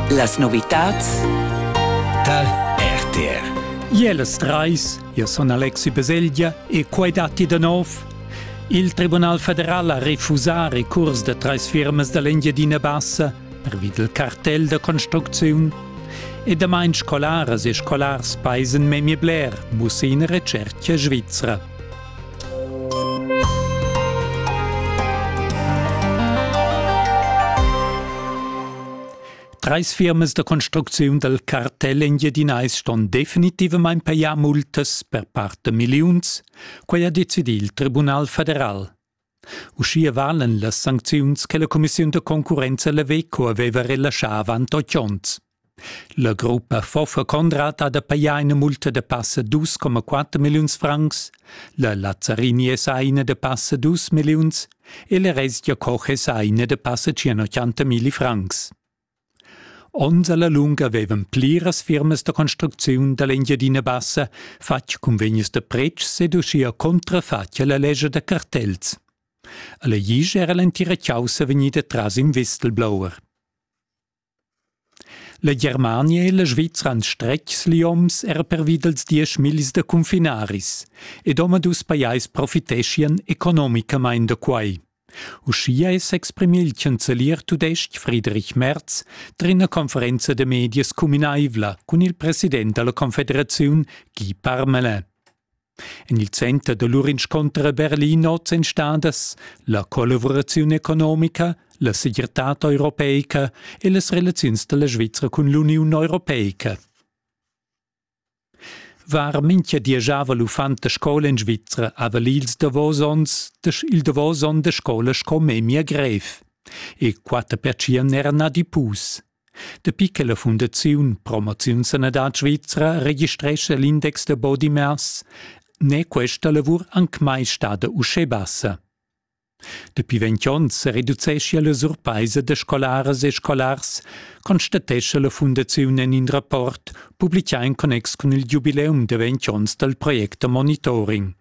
Las novitads Tal RTR Jeles Treis, io son Alexi Beselgia e quai datti da nov. Il Tribunal federal ha refusà recurs da trais firmas da l'Engiadina Bassa pervi del cartell da construcziun. E damain scolaras e scolars paisen memie bler, muss in retschertga svizra. Treis firmas da construcziun dal cartel engiadinais ston definitivamain pajar multas per part da milliuns. Quai ha decidì il Tribunal federal. Uschia valan las sancziuns che la cumissiun da concurrenza Leveco aveva relaschà avant otg onns. La gruppa Foffa Conrad ha da pajar ina multa da passa 2,4 milliuns francs, la Lazzarini è sa ina da passa 2 milliuns e la Resgia Koch è sa ina da passa 180 milli francs. Onns alla lunga vevan pliras firmas da construcziun dall'Engiadina Bassa fatg cunvegnis da pretschs ed uschia contrafatg alla lescha da cartels. Alla Glisch era l'entira chaussa vegnida tras in Vistelblower. La Germania e la Svizra han stretgs lioms era pervi dals diesch millis da confinaris ed omadus pajais profiteschian economicamain da quai. Uschia è s'exprimì il chancelier tudestg Friedrich Merz tar ina conferenza da medias cuminaivla cun il president da la Confederaziun Guy Parmelin. En il center da lur inscunter a Berlin oz èn stadas la collavuraziun economica, la segirtad europeica e las relaziuns da la Svizra cun l'Uniun europeica. Var mincha di giava l'uffant da scoula in Svizra, haval ils davos ons il davos on da scoula sco memia grev. E quatter pertschien n'era na di pus. Dapi che la fundaziun Promoziun Sanadad Svizra registrescha l'index da body mass, n'è questa lavur anc mai stada uschè bassa. Dapi ventg onns sereducescha la surpaisa da scolaras e scolars, constatescha la fundaziun en in rapport publicà en connex cun il giubileum da ventg onns dal project Monitoring.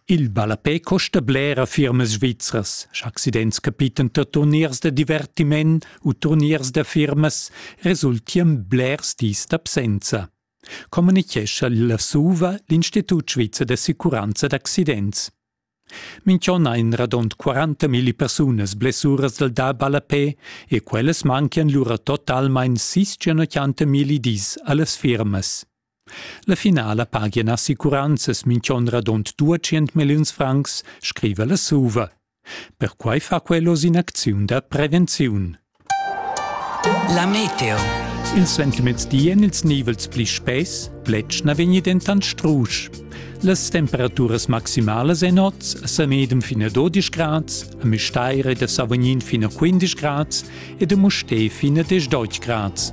Il ballapè costa bler a firmas svizras, sch'accidents capitan da turniers da divertiment u turniers da firmas, resultian blers dis d'absenza. communichescha la SUVA l'Institut svizzer d'assicuranza d'accidents. Minch'on ha in radund 40.000 persunas blessuras dal da ballapè e quellas manchian lura totalmain 680.000 dis a las firmas. La finala pagian assicuranzas minch'on radund 200 milliuns francs, scriva la SUVA. Perquai fa quel oz in'acziun da prevenziun. La meteo. Il suentermezdi èn ils nivels pli spess, pletg na vegni dentant strusch. Las temperaturas maximalas èn oz a medem fin a 12 grads, a Müstair ed a Savognin fin a 15 grads ed a Mustér fin a 10 grads.